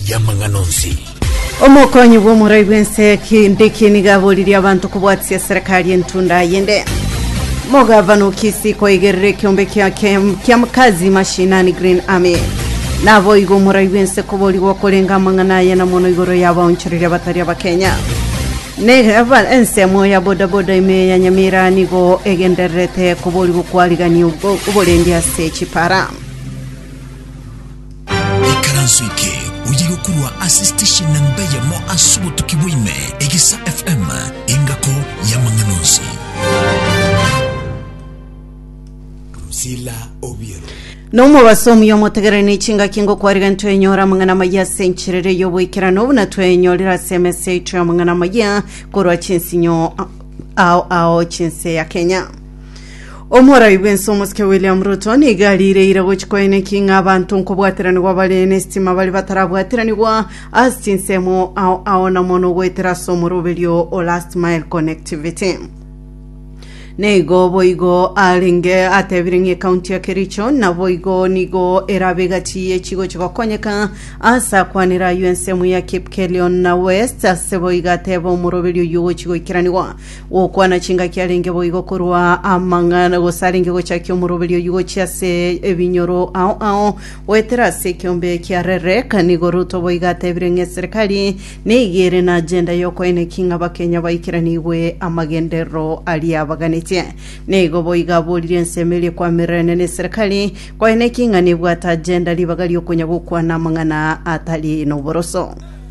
y'amang'ana onsi. Omokonyi bw'omorai bw'ense kindiki nigo aboririe abanto kobwatisia serikali entunda yende. Mogavana Okisi koigerera ekiombe kia kia makazi mashinani Green Army. Naboigo omorai bw'ense koborigwa korenga amang'ana aya na mono igoro y'abaonchoreri abatari abakenya. Negaba ensemo ya bodaboda ime ya Nyamira nigo egendererete koborigwa kwarigania oborendi ase chipara. Ikaranso eke oye gokorwa ase station namba eyemo ase obotuki bwa ime, Egisa FM, engako y'amang'ana onsi. Lucila Obiero. Nomobaso omuya omotegereri ne chingaki ngokwariga ntwenyora amang'ana amaya ase encherera y'oboikerano buna twenyorire ase emesa yaito y'amang'ana amaya korwa chinsinyo ao ao chinse ya Kenya. Omorai bw'ense omosike William Ruto nigo ariireire gochia koeneki ng'a abanto nkobwatiranigwa bare n'esitima bare batarabwatiranigwa ase chinsemo ao ao na mono goetera ase omoroberio o last mile connectivity. Neigo boigo arenge atebire ng'a ekaunti ya Kericho naboigo nigo erabe egati ye chigochia gokonyeka ase akwanera ayio ensemo ya Kipkelion na West ase boigo ateba omoroberio oyio ogochia goikeranigwa Gokwana chingaki arenge boigo korwa amang'ana, gose arenge gochakia omoroberio oyio gochia ase ebinyoro ao ao, goetera ase ekeombe kia Rere. Kanigo Ruto boigo atebire ng'a eserekari nigo ere na agenda y'okoeneki ng'a Abakenya baikeranigwe amagenderero aria abaganetie. Nigo boigo aborire ensemo eria ekwamirenene na eserekari koeneki ng'a nebwate agenda ribaga riokonya gokwana amang'ana atari noboroso.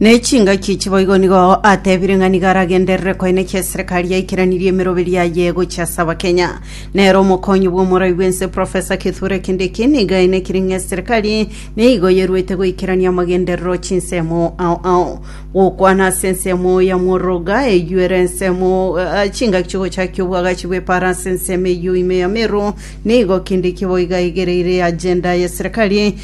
Ne chingaki echi boigo nigo atebire ng'a nigo aragenderere koenekia eserekari yaikiranirie emeroberi yaye gochia ase abakenya. Nere omokonyi bw'omorai bw'ense Professor Kithure Kindiki nigo aenekire ng'a eserekari nigo yeruete goikerania amagenderero chinsemo ao ao. Gokwana ase ensemo ya Mworoga eyio ere ensemo eh, chingaki chigochakia obwagachi bw'epara ase ensemo eyio ime ya Meru nigo Kindiki boiga aigereire agenda y'eserekari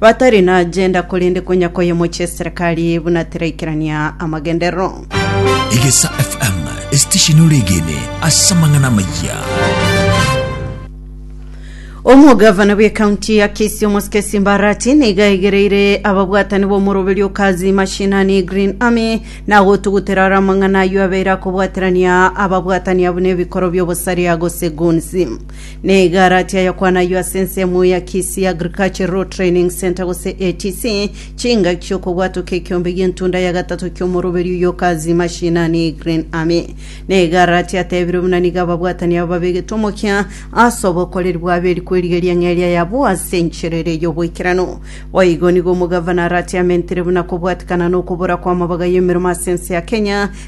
Batari na ajenda korende konya koyemochia eserekari buna teraikerania amagenderero. Egesa FM, esitesheni ore egene ase amang'ana amayia. Omogavana bw'ekaunti ya Kisii Omosike Mbarati niga aigereire ababwatani b'omoroberio o Kazi Mashinani Green Army na gotugutera aro amang'ana ayio abeire akobwaterania ababwatani abwo n'ebikoro by'obosaria gose goons. Neigaratia yokwanaywo ase ensemo ya Kisii Agricultural Training Centre gose ATC, chingaki chi'okobwatoka ekiombe gi'entunda ya gatato ki'omoroberi oyo okazi mashinani Green Army. Neigaratia atebire buna nigo ababwatani aba babegetwe omokia ase obokoreri bwabo eri kwerigeria ng'a eria yabo ase enchera eria y'oboikeranu. Boigo nigo omogavana aratiamentire buna kobwatikana na okobora kw'amabaga y'emeremo ase ense ya Kenya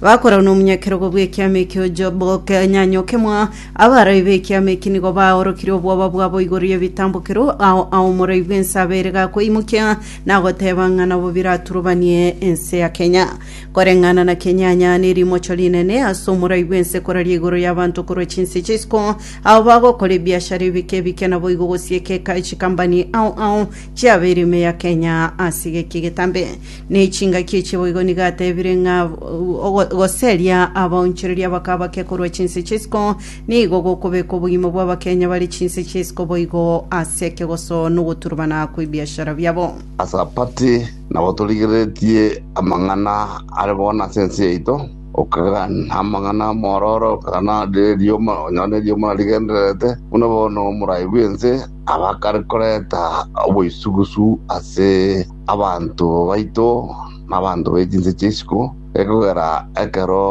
Bakorwa nomonyakerogo bw'ekiama ekio ojo bokanyanyoke'mwa, abarai b'ekiama eki nigo baorokirie obwoba bwabo igoro y'ebitambokero ao aomorai bw'ense abeire gakoimokia na goteba ng'a nabo biraturubanie ense ya Kenya. Koreng'ana na kenyanya nerimocho rinene ase omorai bw'ense koraria igoro y'abanto korwa chinse chisiko, ao bagokora ebiashara ebike ebike naboigo gosiekeka chikambani ao ao chiabeire ime ya Kenya ase geki getambe. Ne chingaki echi boigo nigo atebire ng'a ogo- goseria abaonchoreria bakaba bake korwa chinse chi'isiko nigo gokobeka obogima bw'Abakenya bare chinse chi'isiko boigo ase ekegoso nogoturubana kw'ebiashara biabo. Ase Apati nabo torigereretie amang'ana are bono ase ense yaito, okagana amang'ana amororo, okagana rierio mo- onye nerio morarigendererete, buna bono omorai bw'ense abakare koreta oboisugusu ase Abanto baito nabanto be chinse chi'isiko, ekogera ekero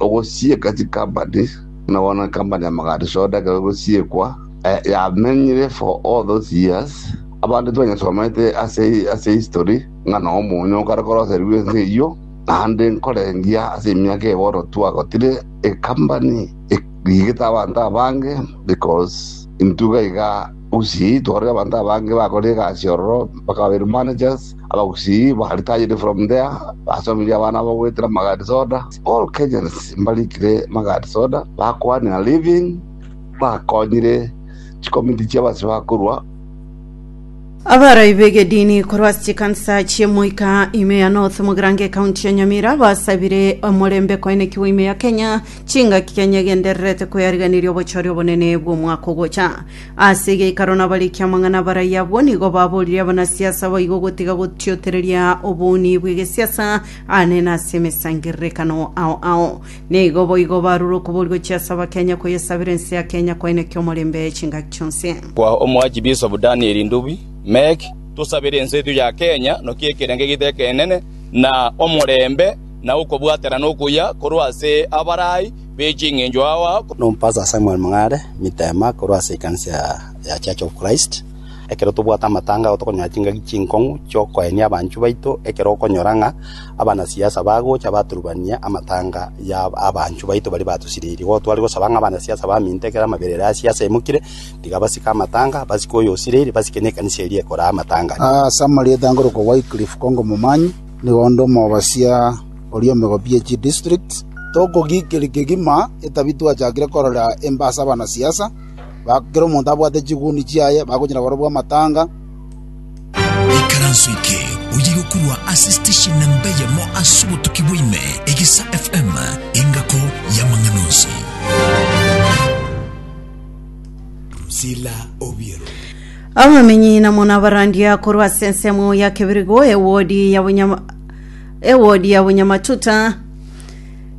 ogosieka chikampani, buna bono ekampani ya Magadi Soda ekero egosiekwa, yamenyire for all those years, abande twanyesomete ase history ng'a noo omonyo okare koroserigwa ense eyio, naende nkorengia ase emiaka eye bono twagotire ekampani rigete abanto abange because intwe iga iga. Gusii twarorire abanto abange bakore egasi ororo, mpaka babeire managers, abagusii ba retired from there, basomirie abana abo goetera magadi soda, all Kenyans mbarikire magadi soda, bakoanera living, bakonyire chikomiti chia abasibwa bakorwa, Abarai b'egedini korwa ase chikansa chi'emoika ime ya North Mogirango Ekaunti ya Nyamira basabire omorembe koenekigwa ime ya Kenya Chingaki kenyegendererete koyariganiria obochore obonene bw'omwaka ogocha. Ase egeikaro nabarikia amang'ana abarai abwo nigo baborire abanasiasa baigo gotiga gotiotereria obouni bw'egesiasa aane na ase emesangererekano ao ao. Nigo boigo barure okoboria gochia ase Abakenya koyesabera ense ya Kenya kwainaki omorembe chingaki chionsi. Kwa Omoachi Bishop Daniel Ndubi, Mec, Tosabere ense yaito ya Kenya nokia ekerengo egeito ekenene na omorembe. na okobwaterana okuya korwa ase abarai be ching'encho ao. Nompasa Samuel Mng'are mitema korwa ase ekanisa ya Church of Christ. Ekero tobwate amatanga ao tokonyora chingaki chinkong'u chi'okoenia abanchwa baito ekero okonyora ng'a abanasiasa bagocha baturubania amatanga ya abanchwa baito baria batosiririe. Igo tware gosaba ng'a abanasiasa baminto ekero amabera ere ase siasa emokire tiga basike amatanga, basike oyo osiririe, basike nekanisa eria ekoraa amatanga. Ase amarieta nkorokwa Wycliffe Kongo Momanyi. Nigo onde omobasia oria omegobi ye chidistrikt, tokogikiri kegima etabia twachakire korora embe ase abanasiasa, kera omonto abwate chiguni chiaye bagonyora barobwo amatanga. Ikaranso eke oyeirwe korwa ase station nemba eyemo ase obotuki bwa ime, Egesa FM, engako y'amang'ana onsi. Priscilla Obiero. Abamenyi na muna barandia korwa ase ensemo ya Kebirigo ewodi ya Bunyama ewodi ya Bunyamatuta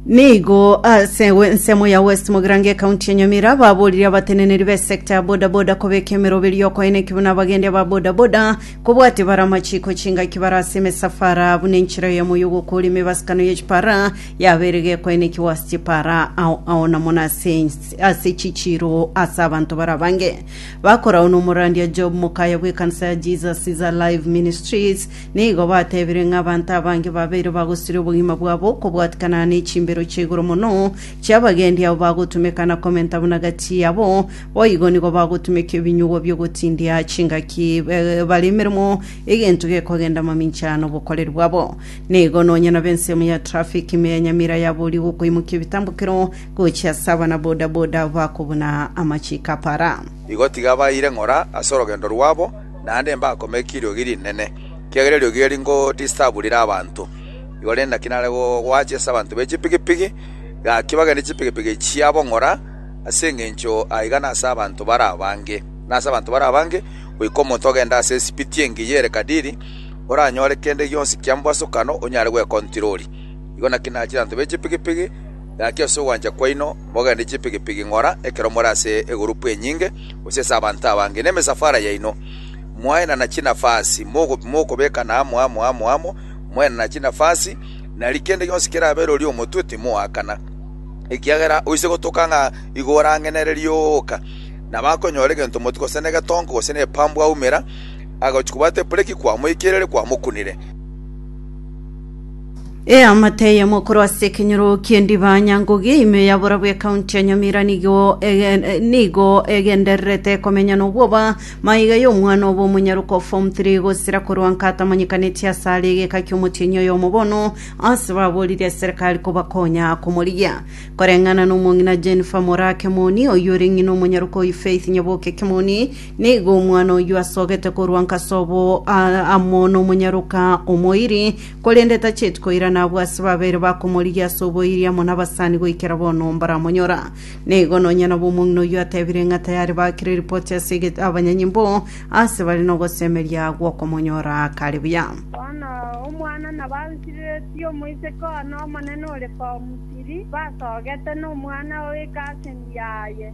nigo ase we- ensemo ya West Mogirango ekaunti ya Nyamira baborire abateneneri be sector ya bodaboda kobeka emeroberi yokoina ekibe na abagendi aba bodaboda kobwate bare amachiko chingaki bare ase emesafara buna enchera ya moyo gokori emebasakano ye chipara yabere gekoenekiwa ase chipara ao ao na muna ase ase chichiro ase abanto barabange Bakorau nomorandia Job mokaya bw'ekansa ya Jesus is Alive Ministries, nigo batebire ng'a abanto abange babeire bagosiria obogima bwabo okobwatikana ne chimbero chia igoro mono chi'abagendi abo bagotumeka na komenta buna gati yabo, boigo nigo bagotumeka ebinyugwa bi'ogotindia chingaki bare emeremo egento gekogenda mamincha nobokoreri bwabo. Nigo nonya nab'ensemo ya traffic ime ya Nyamira yaboria gokoimokia ebitambokero, gochia ase abana-bodaboda bakobuna amachiiko a para. Igo tigabaeire ng'ora ase orogendo rwabo, naende mbakomeki eriogi rinene, ekiagera eriogi eri ngodisturb rire abanto. Igo rende naki nare goachia ase abanto be chipigipigi, gaki bagende chipigipigi chiabo ng'ora, ase engencho aiga nase abanto bare abange. Nase abanto bare abange, goika omonto ogende ase esipiti engiya ere kadiri, oranyore kende gionsi kia mbwasokano onyare gwekontirori. Igo naki naachire abanto be chipigipigi. Gaki ase ogwancha kwaino mogende chipigipigi ng'ora ekero more ase egurupu enyinge, gose ase abanto abange, nemesafara yaino, mwaenana chinafasi, mokobekana amo amo amo amo, mwaenana chinafasi, nari kende gionsi kerabe rori omotwe, timoakana. Ekiagera oise gotoka ng'a igo orang'enererie ooka, nabakonyora egento moti gose negetonko gose nepambu aumera, agochi kobwata epureki kwamoikerire kwamokunire. Eamate eyemo korwa ase ekenyoro ki'endiba Nyangugi ime ya borabu ya county ya Nyamira nigo ege- eh, nigo egendererete komenya nobwoba maiga y'omwana obo omonyaroka o form 3 gosira korwa nka atamanyekaneti ase are egeka ki'omotienyi oyomo bono ase baboririe eserekari kobakonya komorigia koreng'ana nomong'ina Jennifer Moraa Kemoni oyio ore ng'ina omonyaroka oyio Faith Nyaboke Kemoni nigo omwana oyio asogete korwa nka sobo a- amo nomonyaroka omoiri Korende tacheti koirana abwo ase babeire bakomorigia ase oboiria amo nabasani goikera bono mbaramonyora. Na igo nonya nabo omong'ina oyio atebire ng'a tayari bakire ripoti ase eget- abanyanyimbo aase bare nogosemeria gw'okomonyora kare buya. Bono omwana nabaansireretie omoiseke one omonene ore Pau Misiri, basogete nomwana oye ase engiya yaye.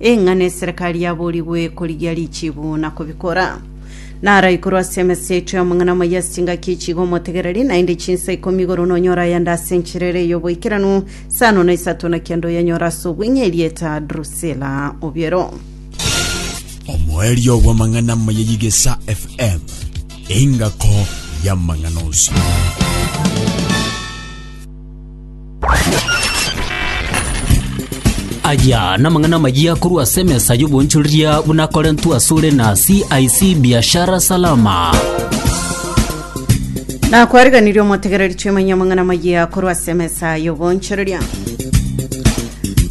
Ing'ana eserekari yaboorigwe korigia richiibu na kobikora. Nara igoro ase emesa yaito y'amang'ana amaya ase chingaki echi iga omotegereri, naende chinsa ikomi igoro nonyore ayande ase enchera ere y'oboikeranu, sano na isato na kende oyanyore ase obweng'e erieta Drusila obiero. Omoerio bw'amang'ana amaya y'Igesa FM, engako y'amang'ana onsi. Aya namang'ana amayia korwa ase emesa y'obonchoreria buna akorentwe asore na CIC Biashara Salama. nakwareganirie omotegereri twimanya amang'ana amayia korwa ase emesa y'obonchoreria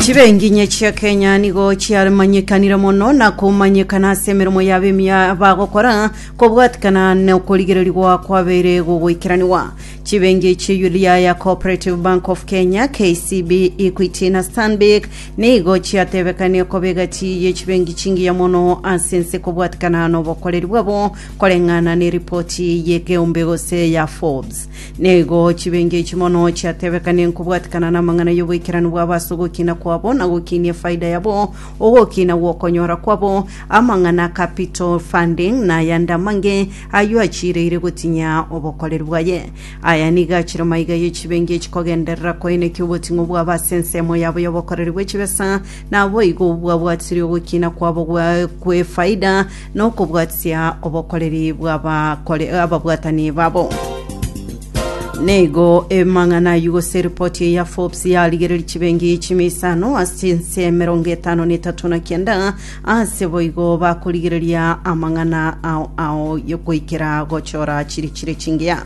chibenginye chia kenya nigo chiamanyekanire mono na komanyekana ase emeremo yabo emiya bagokora kobwatikana na okorigererigwa kwabeire gogoikeraniwa Chibengi chi Yudhiaya, Cooperative Bank of Kenya, KCB, Equity na Stanbic nigo chiatebekanie koba egati ye chibengi chingiya mono ase ense kobwatikana nobokoreri bwabo koreng'ana ne ripoti ye Geumbe gose ya Forbes. Nigo chibengi echi mono chiatebekanie nkobwatikana namang'ana yoboikeranu bwabo ase ogokina kwabo na gokinia efaida yabo, ogokina gwokonyora kwabo, amang'ana a capital funding na ayande amange Ayio achiireire gotinya obokoreri bwaye. Aya nigo achire maiga ye chibengi echikogenderera koinekia oboting'u bwabo ase ensemo yabo y'obokoreri bwe chibesa, naboigo obwabwatirie ogokina kwabo gwa- gw'efaida na okobwatia obokoreri bw'abakore- ababwatani babo. Nigo emang'ana ayio gose eripoti eye ya Forbes yarigereria chibengi chimia isano ase chinse emerongo etano na etato na kianda Aase boigo bakorigereria amang'ana ao ao goikera gochora chire chire chingea.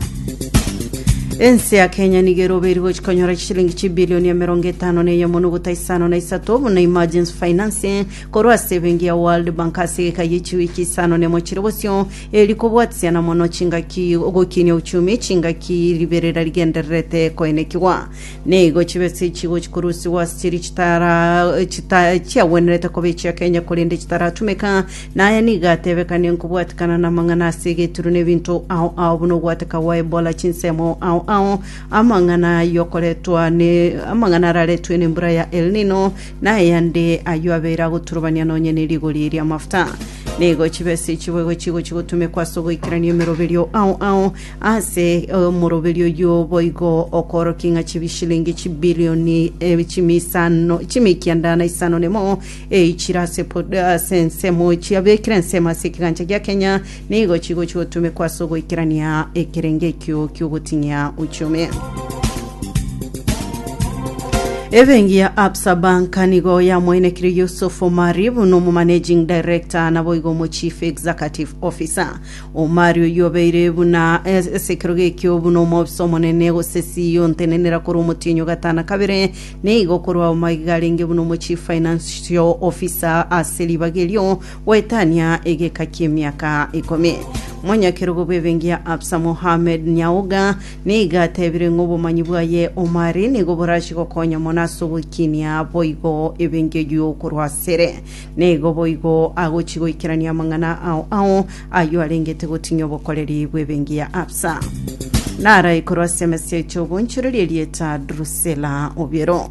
Ense ya Kenya nigo erobe eri gochia konyora chishilingi chibilioni emerongo etano na eyemo nogota isano na isato buna emergency financing korwa ase ebenki ya World Bank ase egeka ye chiwiki isano na emochire bosio eri kobwatisiana mono chingaki gokinia uchumi chingaki riberera rigendererete koenekigwa Nigo chibe ase echigochi korusigwa ase chiria chitara chita- chiagwenerete koba echia Kenya korende chitaratumeka, na aya nigo atebekanie nkobwatekana namang'ana ase egeturu na ebinto ao ao buna ogwateka gwa Ebola, chinsemo ao ao, amang'ana yokoretwa ne amang'ana araretwe nembura ya El Nino, na ayande ayio abeire agoturubania nonye ne rigori riamafuta. Nigo chibe ase echiboigo chigochi gotumekwa ase ogoikerania emeroberio ao ao, Ase omoroberio oyio boigo okoorokia ng'a chibishilingi chibilioni eh, chimi isano chimi ekianda na isano nemo eichire ase pod- ase ensemo chiabekire ensemo ase ekegancha gia Kenya nigo chigochi gotumekwa ase ogoikerania ekerengo ekio ki'ogoting'ia uchumi. Ebengi ya Absa Bank nigo yamoinekire Yusuf Omari buna omomanaging director naboigo omochief executive officer. Omari oyio obeire buna e- esekero gekio, buna omobisa omonene, gose CEO ntenenera korwa omotienyi o gatano kabere, na igo korwa omaiga iga arenge buna omochief financial officer ase ribaga erio, goetania egeka ki'emiaka ikomi. Omonyakerogo bw'ebenki ya Absa Mohammed Nyauga nigo atebire ng'a obomanyi bwaye Omari nigo borachie gokonya mono ase ogoikinia boigo ebenki eyio korwa asere. Nigo boigo agochia goikerania amang'ana ao ao, ayio arengete gotinyia obokoreri bw'ebenki ya Absa. Narae korwa ase emesia echo obonchorerie erieta Drusela obiero.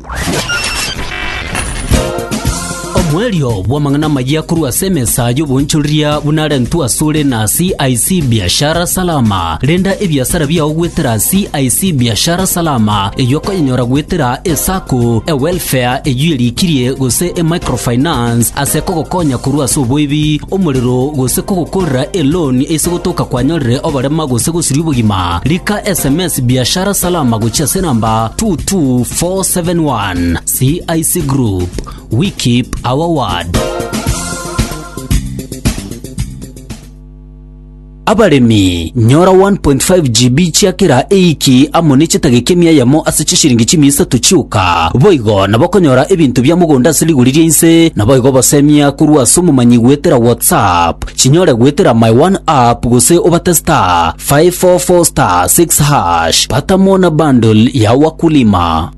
Omwerio bw'amang'ana amayia korwa ase emesa y'obonchoreria buna arentwe asore na CIC Biashara Salama. Renda ebiasara biao goetera CIC Biashara Salama, eyio okonyenyora goetera eSacco, eWelfare eyio erikirie, gose eMicrofinance ase kogokonya korwa ase oboibi, omorero, gose kogokorera eloan ase gotoka kwanyorire oborema gose gosiria obogima. Rika sms Biashara Salama gochia ase enamba 22471. CIC Group, we keep our word. Abaremi, nyora 1.5 GB chia kera eiki amo ne chetageki emiayemo ase chishiringi chimia isato chioka. Boigo nabokonyora ebinto bia mogondo ase rigori ria inse, naboigo obosemia korwa ase omomanyi goetera WhatsApp. Chinyore goetera my one app gose obate *544*6#. Pata mo na bundle ya wakulima.